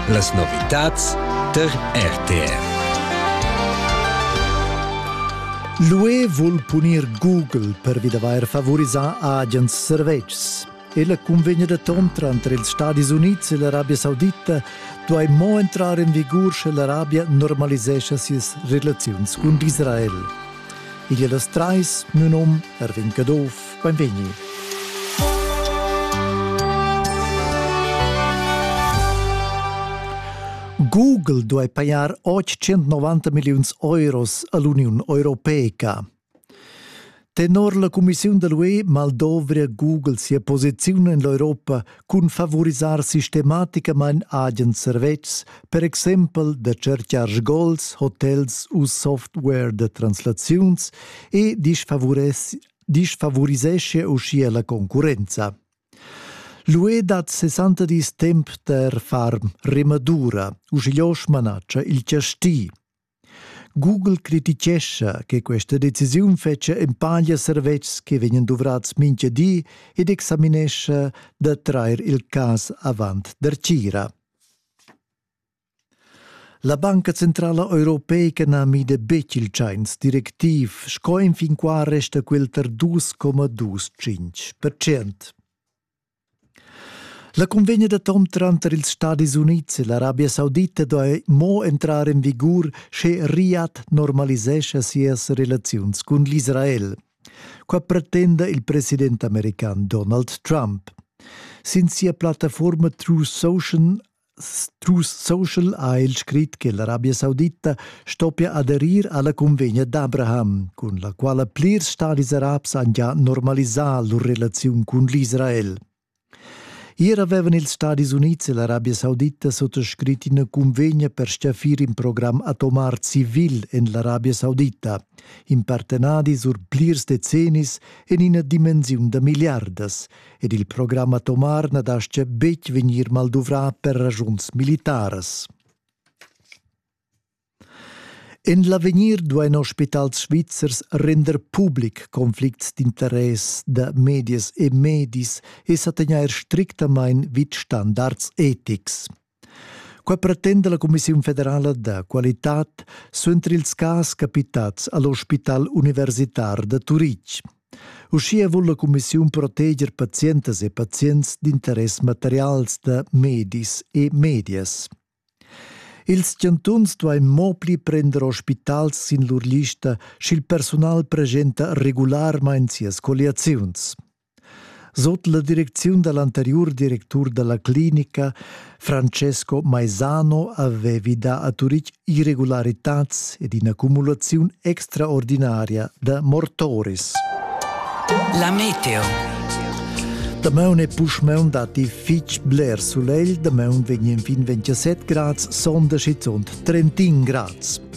Las novitads tar RTR. L'UE vul punir Google pervi d'avair favorisà agens servetschs. Ella cunvegna denton tranter ils Stadis Unids e l'Arabia Saudita duai mo entrar en vigur sche l'Arabia normalisescha sias relaziuns cun Israel. Igl è las trais, nun um, Erwin Caduff, Beinvegni. Google duai pajar 890 milliuns euros a l'Uniun Europeica. Tenor la cumissiun da l'UE mal dovria Google sia posiziun en l'Europa cun favorisar sistematicamain agens servetschs, per exempel da cercar sgols, hotels u software da translaziuns e disfavuress disfavorisesce uschia la concurrenza. L'UE dat 60 dis temp per far remadura, uschigliò smanaccia il chasti. Google criticescha che questa decisiun fece empaglia servetschs che vegnan dovrats mincha di ed examinescha da trair il cas avant der Cira. La Banca centrala europeica na mida betg il tschains directiv, sco enfin qua resta quel tar 2,25 percent. La convegna d'atom tranter ils Stadis Unids e l'Arabia Saudita doi mo entrar en vigur sche Riad normalisescha sias relaziuns cun l'Israel. Qua pretenda il president american Donald Trump. Sin sia plattaforma True Social Tus social ha el scrit che l'Arabia Saudita stoppia aderir alla cunvegna d'Abraham, cun la quala plirs stadis arabs han già normalisà lur relaziun cun l'Israel. Ier avevan ils Stadis Unids e l'Arabia Saudita sottoscrit ina cunvegna per stgaffir in program atomar civil en l'Arabia Saudita, in partenadi sur plirs decennis en ina dimensiun da milliardas, ed il program atomar na dastgia betg vegnir malduvrà per ragiuns militaras. En l'avegnir duain ospitals svizzers render public conflicts d'interess da medias e medis e sa tegnair strictamain vid standards etics. Qua pretenda la Cumissiun federala da qualitad suenter ils cas capitats all'ospital universitar da Turitg. Uschia vul la Cumissiun proteger pazientas e pazients d'interess materials da medis e medias. Ils chantuns duain mo pli prender ospitals sin lur lista sch'il persunal presenta regularmain sias colliaziuns. Sot la direcziun da l'anteriur directur da la clinica Francesco Maisano avevi dà a Turitg irregularitads ed in'accumulaziun extraordinaria da mortoris. La meteo. Damaun e puschmaun datti fitg bler sulegl, damaun vegn enfin 27 grads, sonda schizunt 31 grads.